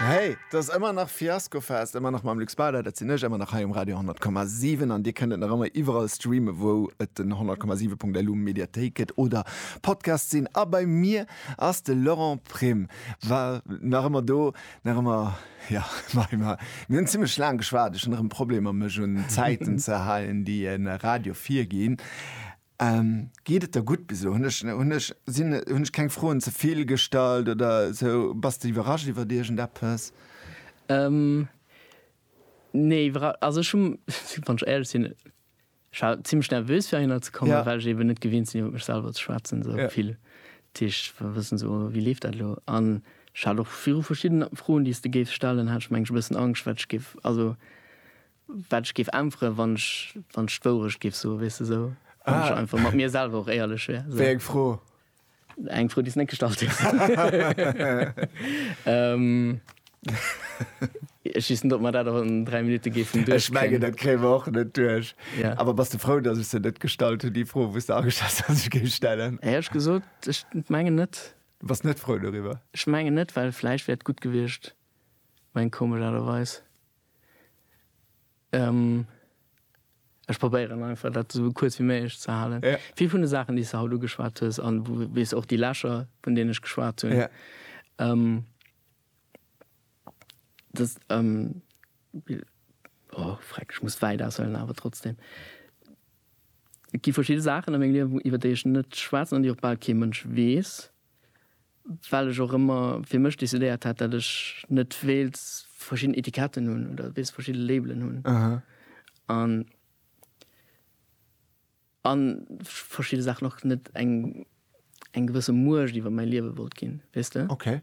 Hey, et ass ëmmer nach Fiaskofest, ëmmer nach mam Luc Spader, dat sinn ech, ëmmer nach hei um Radio 10,7 an Dir kënnt et nach ëmmer iwwerall streamen, wou et den 100,7.lu Mediathéik gëtt oder Podcast sinn. A bei mir ass de Laurent Prim, war nach ëmmer do, nach ëmmer ja mei mer mir hunn zimmlech laang geschwat, ech hunn nach ëm Problemer mech un d'Zäiten ze halen, déi e Radio virginn. Geet et der gutt bis elo? Hunn ech keng Froen ze vill gestallt oder sou? Bass de iwwerrascht iwwert iergendeppes? Nee, iwwerrascht, also ech hu, wann ech éierlech sinn, ech war zimlech nervös fir heihinner ze kommen, well ech eben net gewinnt sinn iwwer mech selwer ze schwätzen sou vill. Dat heescht, wëll wëssen sou wéi leeft dat elo? An ech hat och viru verschiddene Froen, déi s de géifs stellen, hat ech mengen ech e bëssen Angscht wat ech géif, also Wat ech géif äntweren, wann ech, wann ech d'Wourecht géif soen, weess de, esou, wann ech einfach mat mir selwer och éierlech wär, esou. Wéi eng Fro? Eng Fro, déi s de net gestallt hues. Ech weess net, ob mer dat och an dräi Minutte géifen duerchkréien. Ech mengen, dat kréie mer och net duerch. Yeah. Awer bass de frou, datt ech se net gestallt hunn, déi Fro, wou s de ageschat hues, datt ech se géif stellen? Éier ech gesot, ech mengen net. Du bass net frou doriwwer? Ech mengen net, well vläicht wär et gutt gewiescht, meng komesch Aart a Weis. Ech probéieren einfach dat esou kuerz wéi méiglech ze halen. Ja. Vill vun de Saachen, déi s de haut ugeschwat hues, an wou, wéi s och déi Lächer, vun deenen ech geschwat hunn, Ja. dass, oh freck, ech muss wäit aushuelen, awer trotzdem, et gi verschidde Saachen a mengem Liewen, iwwer déi ech net schwätzen an déi och bal kee Mënsch weess. Well ech och ëmmer fir mech decidéiert hat, datt ech net wéilt verschidden Etiketten hunn oder wéilt verschidde Labelen hunn. An a verschidde Saachen och net eng, eng gewësse Muecht iwwer mäi Liewe wollt ginn, weess de? Okay.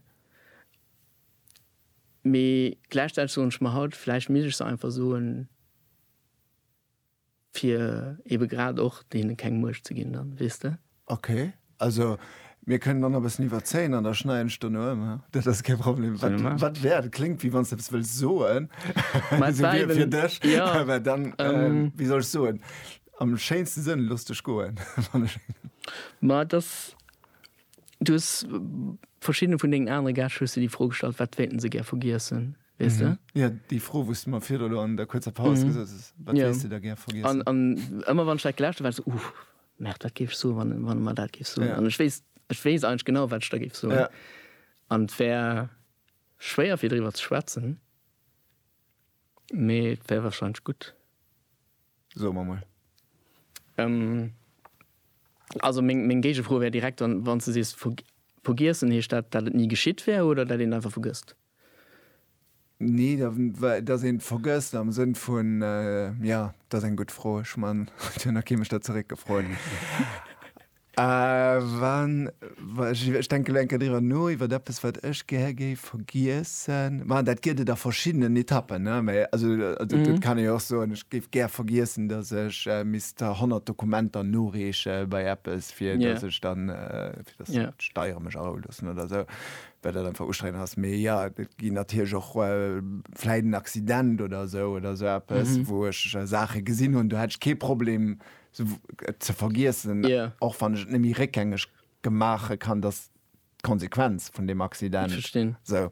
Mee gläichzäiteg soen ech mer haut, vläicht misst ech se einfach soen. Fir ebe grad och deene keng Muecht ze ginn dann, weess de? Ok, also mir kënnen dann nach e bëssen iwwerzéien an da schneiden ech dono ëm, haa? Dat ass kee Problem. Wat, wat wär, dat kléngt wéi wann s de eppes wëlls soen, esou wéi fir dech, mä dann, wéi soll ech soen, am schéinste Sënn, looss dech goen, wann ech. Mä et ass, du hues verschiddene vun dengen anere Gäscht hues de déi Fro gestallt, wat wéilten se gär vergiessen? Weess de? Jo, déi Fro, wou s de mer virdru elo an der kuerzer Paus gesot hues, Wat wéilts de da gär vergiessen? An ëmmer, wann ech dat gelauscht hu, war et esou, Uff, Märt, wat géif ech soen, wann e mer dat géif soen? An ech weess, ech weess eigentlech genau, wat ech da géif soen. An et wär schwéier, fir driwwer ze schwätzen, mee et wär warscheinlech gutt. Soe mer emol. Also meng Géigefro wär direkt, wann s de sees, Vergiessen, heescht dat, dat et ni geschitt wär oder dat een einfach vergësst? Nee, da, well dass een et vergësst am Sënn vun, äh, ja, dat ass eng gutt Fro. Ech man, et huet nach kee mech da zeréckgefrot. Äh, wann, wa, ech, ech denke lo eng Kéier driwwer no, iwwert eppes, wat ech gär géif vergiessen. Ma dat gëtt et a verschiddenen Etappen, ne, mä also, also dat kann ee jo och soen, ech géif gär vergiessen, dass ech misst 100 Dokumenter noreeche bei eppes, fir dass ech dann, fir dass d'Steiere mech arouloossen oder esou. well dat einfach ustrengend ass, mee jo, et ginn natierlech och vläit en Accident oder esou oder esou eppes, wou ech Saache gesinn hunn, do hätt ech kee Problem et ze vergiessen, och wann ech et net méi réckgängeg maache kann, dass d'Konsequenz vun deem Accident. Ech verstinn. Esou,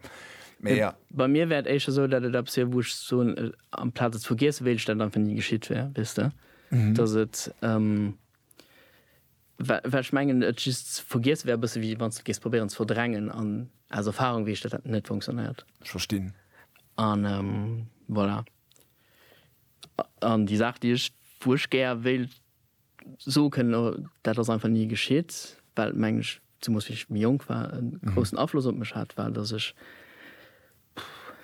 mee jo. Bei mir wär et éischter esou, dat et eppes wier, wou ech soen, amplaz et ze vergiessen, wéilt ech, dat et einfach ni geschitt wär, weess de, dass et. Well ech mengen, et just ze vergiesse wär e bësse wéi wann s de géifs probéieren ze verdrängen. An aus Erfarung weess ech, datt dat net funktionéiert. Ech verstinn. An voilà. An déi Saach, déi ech, wou ech gär wéilt soe kënnen, dat ass einfach ni geschitt, well et, mengen ech, zemoos wéi ech méi jonk war, e groussen Afloss op mech hat, war, datt ech, pff.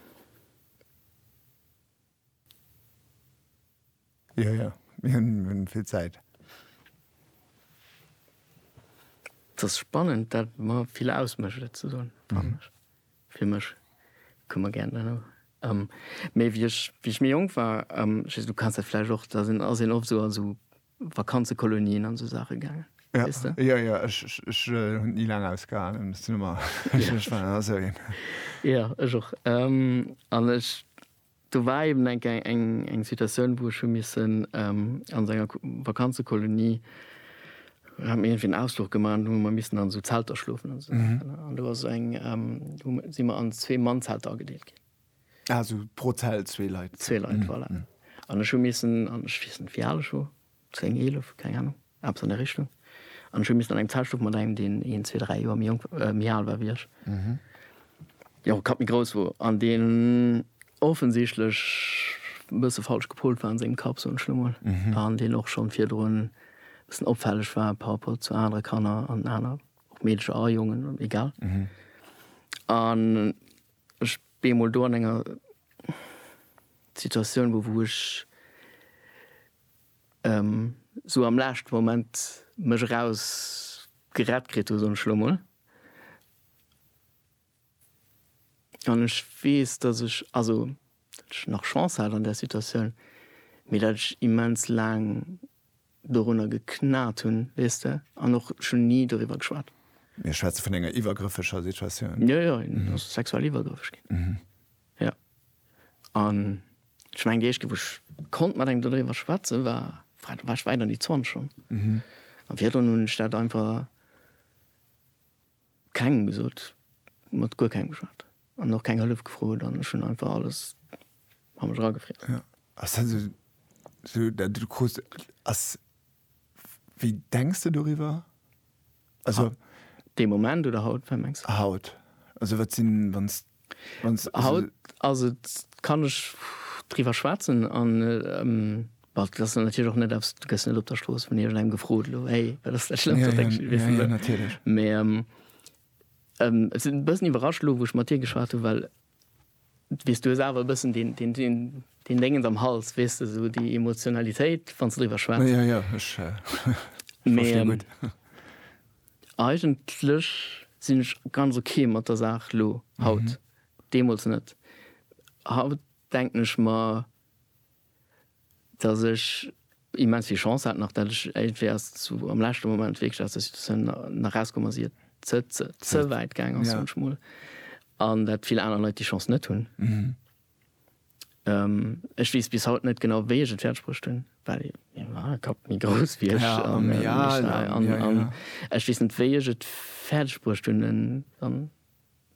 Jo, jo, mir hunn vill Zäit. Et ass spannend, dat mer vill ausmécht, et ze soen, fannen ech. Fir mech. Kucke mer gären dann och. Mee wéi ech, wéi ech méi jonk war, just, du kanns dat vläicht och, da sinn, ass een oft esou an esou. Vakanzekolonien an esou Saache gaangen. Ja, weißt du? ja, ja ech, ech, ech hunn et ni laang ausgehalen, muss den ëmmer, ech, ech war ëmmer esou een. Ja, ech och. An ech, do war eben eng Kéier eng, eng Situatioun, wou ech hu missen an esou enger Vakanzekolonie, hu mir iergendwéi en Ausfluch gemaach an do hu mer missen an esou Zelter schlofen an esou Saachen. An do ass eng, hu mer, si mer an zwee Mannzelter agedeelt ginn. Ah, esou pro Zelt zwee Leit. Zwee Leit, voilà. An ech hu missen, an ech weess net, wéi al ech wor, zéng, eelef, keng Anung, eppes an där Richtung, an ech hu missen an eng Zelt schlofen mat engem, deen een, zwee, dräi Joer méi jonk, méi al war wéi ech, deen och e Kapp méi grouss wor an deen offensichtlech e bësse falsch gepolt war an sengem Kapp, soen ech elo mol, an deen och schonn virdrun e bëssen opfälleg war par rapport zu anere Kanner an aner, och Meedercher a Jongen, egal. An. Ech bin emol do an enger Situatioun wou wou ech sou am laaschte Moment mech eraus gerett kritt hu soen ech elo mol. An ech weess datt ech, also datt ech nach Chance hat an där Situatioun, mee datt ech immens laang dorunner geknat hunn, weess de, an och schonn ni doriwwer geschwat. Mir schwätze vun enger iwwergrëffeger Situatioun. Jo, jo, en ass sexuell iwwergrëffeg ginn, jo. An ech mengen, déi éischt Kéier, wou ech konnt mat engem dodriwwer schwätzen, war, wa, da war ech wäit an déi 20 schonn. An virdrun hunn ech dat einfach. Kengem gesot, mat guer kengem geschwat an och keng Hëllef gefrot an ech hunn einfach alles a mech eragefriess. Ja, ass dat esou esou dat du krus ass, wéi denks de doriwwer? Also. Dee Moment oder haut, wat mengs de? Haut, also wat sinn, wann s Haut ass et, kann ech driwwer schwätzen an dat ass dann natierlech och net eppes, du gëss net op der Strooss vun iergendengem gefrot elo, hey, wat ass dat Schlëmmst, wat deck ech iwwer fir elo? Mee ech sinn e bëssen iwwerrascht elo, wou ech mat dir geschwat hunn, well du weess, du hues awer e bëssen deen Déngens am Hals, weess de, esou déi Emotionalitéit, wann s de driwwer schwätz. Jo, jo, ech verstinn gutt. Eigentlech sinn ech ganz ok mat der Saach elo, haut. Deemools net. Haut denken ech mer, datt ech immens vill Chance hat nach, datt ech iergendwéi erst zu am leschte Moment wierklech aus der Situatioun erauskomm ass, ier et ze wäit gaang ass, soen ech mol, an datt vill aner Leit déi Chance net hunn. Ech wees bis haut net genau wéi ech et fäerdeg bruecht hunn, well mir war e Kapp méi grouss wéi ech an ech weess net wéi ech et fäerdeg bruecht hunn en dann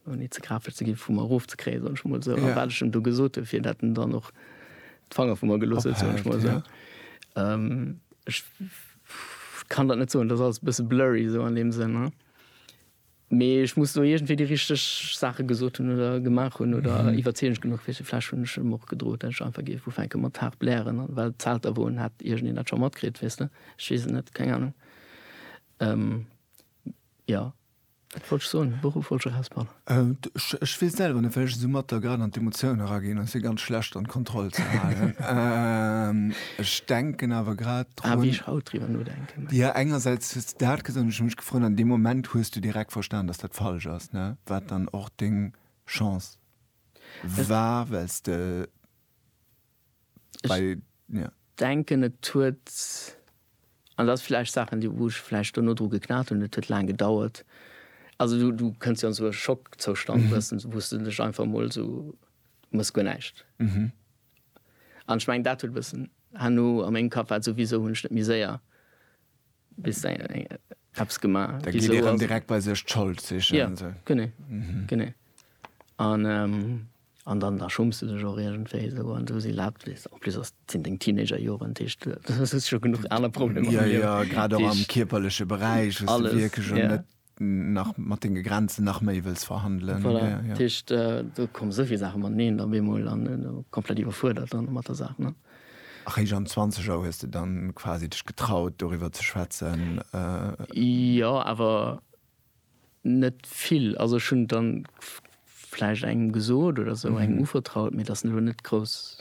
ouni ze graflech ze ginn vu mer erof ze kréien, soen ech mol esou, a wat ech em do gesot hunn, fir dat en dann och d'Fanger vu mer gelooss huet, soen ech mol esou. Ech kann dat net soen, dat ass alles e bësse blurry esou an deem Sënn. Mee ech muss do iergendwéi déi richteg Saache gesot hunn oder gemaach hunn oder iwwerzeegend genuch wier. Vläicht hunn ech em och gedrot, dat ech einfach géif ufänke mat haart blären, an well d'Zelter woen, hätt iergendeen dat scho matkritt, weess de. Ech weess et net, keng Anung. Jo, wat wollt ech soen? Wouruf wollt ech eraus, Paul? Ech weess selwer net, well ech esou matt da grad an d'Emotioun eraginn, ass jo ganz schlecht an d'Kontroll ze halen. Ech denken awer grad. Ah, wéi ech haut driwwer nodenken. Jo, engersäits hues de dat gesot an ech hu mech gefrot, an deem Moment hues du direkt verstan, datt dat falsch ass, ne? Wat dann och deng Chance war, well s de bei, jo. Ech denken, et huet, an dat ass vläicht Saachen, déi, wou ech vläicht dono dru geknat hunn, et huet laang gedauert. Also du, du kënns jo an esou e Schockzoustand, wou s de dech einfach emol esou, du mëss guer näischt. An ech mengen dat huet e bëssen herno a mengem Kapp war souwisou hunn ech net méi séier bis eppes gemaach. Da geet ee rëm direkt bei sech d'Schold sichen. Jo, genee, genee. An dann da schumms de dech och iergendwéi esou an esou si laabt weess de. En plus ass sinn deng Teenagerjoren, dat heescht du hues scho genuch aner Problemer am Liewen. Jo, jo, grad och am kierperleche Beräich, wou s de wierklech och net nach mat denge Grenzen nach méi wëlls verhandelen. Voilà, ja, ja. Dat heescht, do komme souvill Saache mateneen op eemol an komplett iwwerfuerdert dann mat der Saach, ne? A réischt am Zwanzeger hues de dann quasi dech getraut, doriwwer ze schwätzen? Jo, awer net vill. Also ech hunn dann vläicht engem gesot oder esou, engem uvertraut, mee dat ass elo net grouss.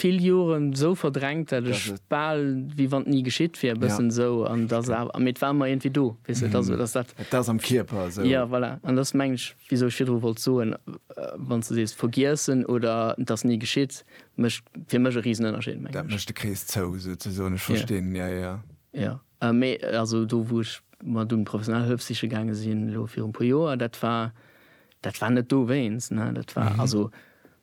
vill Joren esou verdrängt, dat ech bal wéi wann et ni geschitt wier, e bëssen esou. An dass a, mee et war ëmmer iergendwéi do, weess de, et ass, et ass dat. Et ass am Kierper esou. Jo, voilà. An dat ass, mengen ech, wisou ech virdru wollt soen, wann s de sees vergiessen oder et ass ni geschitt, mécht fir mech e Risenënnerscheed, mengen ech. Dat mécht de Krees zou, souzesoen. Ech verstinn, jo, jo. Jo, mee also do, wou ech mat un professionell Hëllef siche gaange sinn, elo viru e puer Joer, dat war, dat war net dowéinst, ne, dat war, also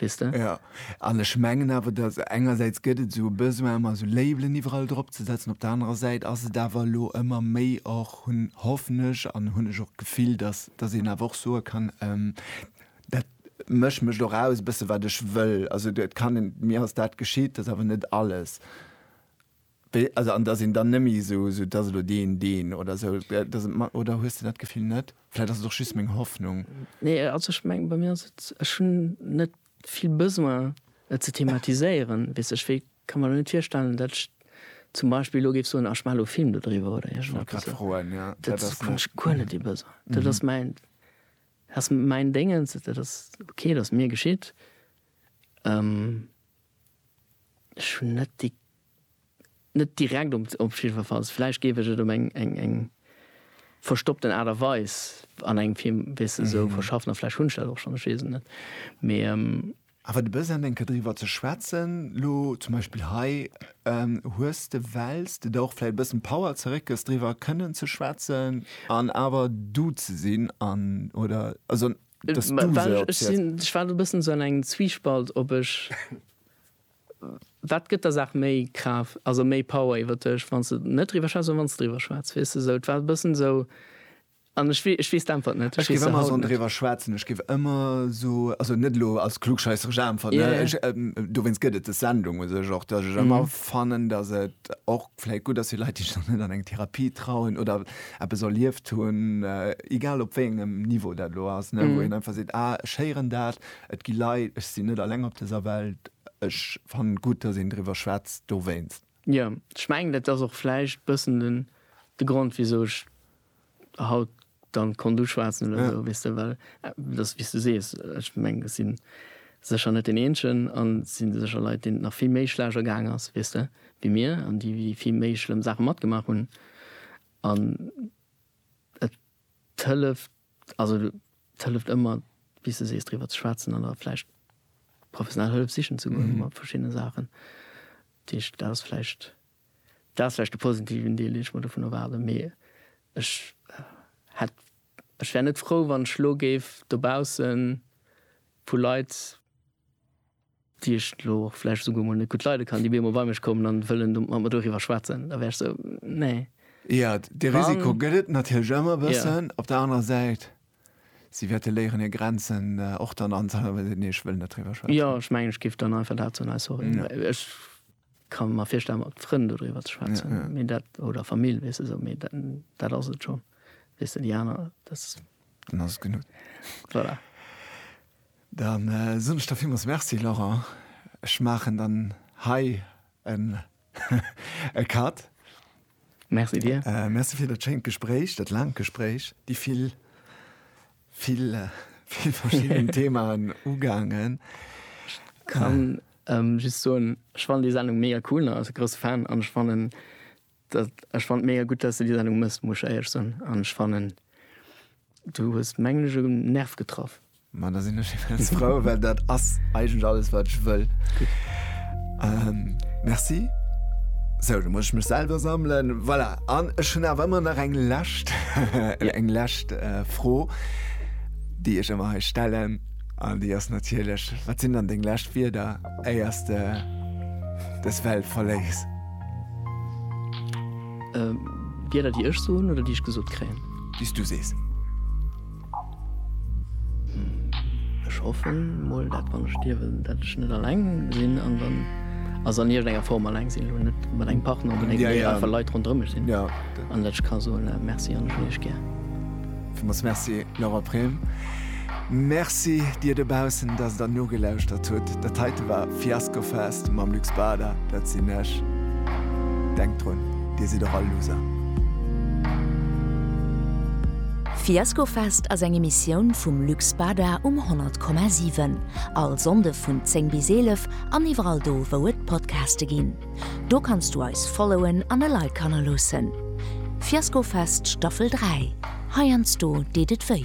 weess de? Jo, an ech mengen awer, dass engersäits gëtt et esou e Besoin ëmmer esou Labelen iwwerall drop ze setzen, op der anerer Säit ass et awer elo ëmmer méi och, hunn, hoffen ech an hunn ech och d'Gefill, dass dass een awer och soe kann, dat mécht mécht och aus e bësse wat ech wëll. Also et kann een, mir ass dat geschitt, dat ass awer net alles. Also an dass een dann nëmme esou esou dass elo deen deen oder esou dass et mat oder hues de dat Gefill net? Vläit ass et och just meng Hoffnung. Nee, also ech mengen bei mir ass et, ech hunn net vill Besoin et ze thematiséieren, weess ech. Wéi ka mer elo net virstellen, datt ech zum Beispill elo géif soen, ah ech maache elo e Film dodriwwer oder iergend eppes. Wollt grad froen, ja. Dat ass hunn ech guer net dee Besoin. Dat ass mäin, dat ass mäin Déngens, dat ass ok, dat ass mir geschitt. Ech hunn net déi net direkt op op jiddwerfalls, vläicht géif ech et op eng eng eng verstoppten Aart a Weis an engem Film, weess de, esou verschaffen a vläicht hunn ech dat och schonn, ech weess et net, mee. Awer de Besoin enker driwwer ze schwätzen, lo zum Beispill hei, hues de, wells de der och vläicht e bëssen Power zeréckgëss driwwer kënnen ze schwätzen an awer du ze sinn an, oder also dass du se. Ech sinn, ech war elo e bëssen esou an engem Zwiespalt, ob ech Wat gëtt der Saach méi Kraaft, also méi Power iwwer dech, wann s de net driwwer schwätz oder wann s de driwwer schwätz? Weess de sou, et war e bëssen esou an ech wee, ech weess d'Äntwert net. Ech géif ëmmer esou driwwer schwätzen, ech géif ëmmer esou, also net elo als klugscheisseresch Äntwert, ne, ech, dowéinst gëtt et des Sendung u sech och, datt ech ëmmer fannen, datt et och vläicht gutt ass fir Leit, déi sech nach net an eng Therapie trauen oder eppes erlieft hunn, egal op wéi engem Niveau dat elo ass, ne, wou een einfach seet, ah, ech héieren dat, Et gi Leit, ech sinn net alleng op dëser Welt, ech fannen et gutt, dass een driwwer schwätzt dowéinst. Jo, ech mengen dat ass och vläicht bëssen den de Grond wisou ech haut dann konnt uschwaatzen oder esou, weess de, well et ass wéis de sees, ech mengen ech sinn sécher net deen eenzegen an et si sécher Leit deenen et nach vill méi schlecht ergaang ass, weess de, wéi mir an déi vill méi schlëmm Saache matgemaach hunn an et 't hëlleft, also 't hëlleft ëmmer, wéi s de sees, driwwer ze schwätzen an da vläicht professionell Hëllef sichen ze goen mat verschiddene Saachen. Dat heescht, dat ass vläicht, dat ass vläicht de positiven Deel, deen ech mer dovun erwaarden. Mee ech hätt, ech wär net frou, wann ech elo géif dobausse vu Leit, Déi ech elo och vläicht esouguer emol net gutt leide kann, déi bemol bei mech kommen an wëllen do mat mer doriwwer schwätzen, da wär ech esou, nee. Jo, dee Risiko gëtt et natierlech ëmmer e bëssen. Op der anerer Säit, si wäerte léieren hir Grenzen och dann anzehalen, wa si seet, nee, ech wëll net driwwer schwätzen. Jo, ech mengen, ech géif dann einfach dat soen, hey, sorry, mä ech ka mer virstellen, mat Frënn dodriwwer ze schwätzen, mee dat, oder Famill, weess de, esou, mee dat, dat ass et schonn, weess de, déi aner, dat. Dann ass et genuch. Voilà. Da soen ech der villmools Merci, Laurent. Ech maachen dann hei en e Cut. Merci dir. Merci fir dat schéint Gespréich, dat laangt Gespréich, déi vill, vill, vill verschidden Themaen ugaangen. Ech kann just soen, ech fannen déi Sendung mega cool, ass e grousse Fan, an ech fannen Dat ech fand mega gutt dass de déi Sendung mëss, muss ech éierlech soen, an ech fannen du hues mengen ech en Nerv getraff. Ma da sinn ech immens frou, well dat ass eigentlech alles wat ech wëll. Merci. Sou, da muss ech mech selwer sammelen. Voilà, an ech hunn awer ëmmer nach eng lescht eng lescht Fro déi ech ëmmer hei stellen, an déi ass natierlech, wat sinn dann deng lescht Wierder éiers de des Welt verléiss? Wieder déi ech soen oder déi ech gesot kréien? Déi s du sees. Ech hoffen mol dat wann ech stierwen, dat ech net alleng sinn an dann, also an iergendenger Form alleng sinn, elo net mat engem Partner, mee einfach Leit ronderëm mech sinn an dat ech ka soen, Merci an ech hunn iech gär. Villmools Merci, Laura Prem. Merci dir dobaussen, dass der nogelauschtert hutt. Dat heite war Fiasco Fest mam Luc Spada. Dat sinn ech. Denkt drun, dir sidd och all Loser. Fiasco Fest ass eng Emissioun vum Luc Spada um 100,7. All Sonnde vun 10 bis 11 an iwwerall do, wou et Podcaste ginn. Do kanns du eis followen an e Like hannerloossen. Fiasko Fest Staffel 3, heiansdo deet et wéi.